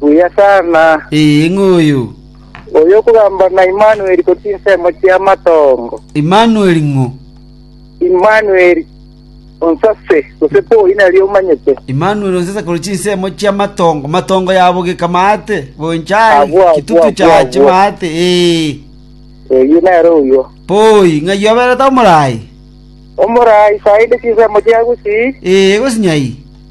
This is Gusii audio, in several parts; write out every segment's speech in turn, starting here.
Buya sana. Ee, ng'oyo. Oyo okogamba ng'a Imanueli korwa chinsemo chi'amatongo. Imanueli ng'o? Imanueli onsase, gose Poi nario omanyete. Imanueli onsase korwa chinsemo chi'amatongo, matongo yabogeka maate, goencha aye, Agwo, agwo, chitutu agwo, chiache agwo. maate, ee. Oyio nere oyio. Poi, ng'ai oberete omorai? Omorai sainde chinsemo chia gusii. Ee, gosinyai.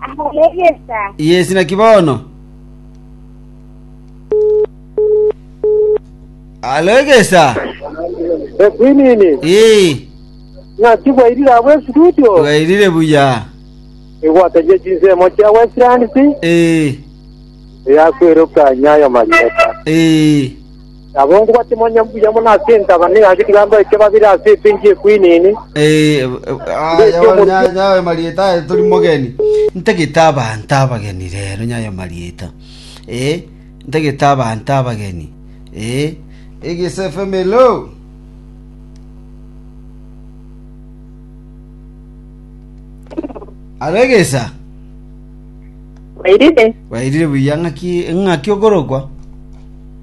Ahalegesa. yes naki bono alegesa Ekwinini, ee ng'aki bwairire abo estudio, bwairire buya igwatagia chinsemo chia Westlands, ee eyakweruka nyayo marieta. ee Nabo ngobwate manya mbuya mono ase entaba na egaki tigambae ekia babere ase epenki ye kwinini. Mbeke omorwoti. Ntagete abanto abageni rero nyayo marieta ee ntagete abanto abageni ee egesefemelo. Alo egesa Wairire? wairire buya ng'aki ng'aki okorokwa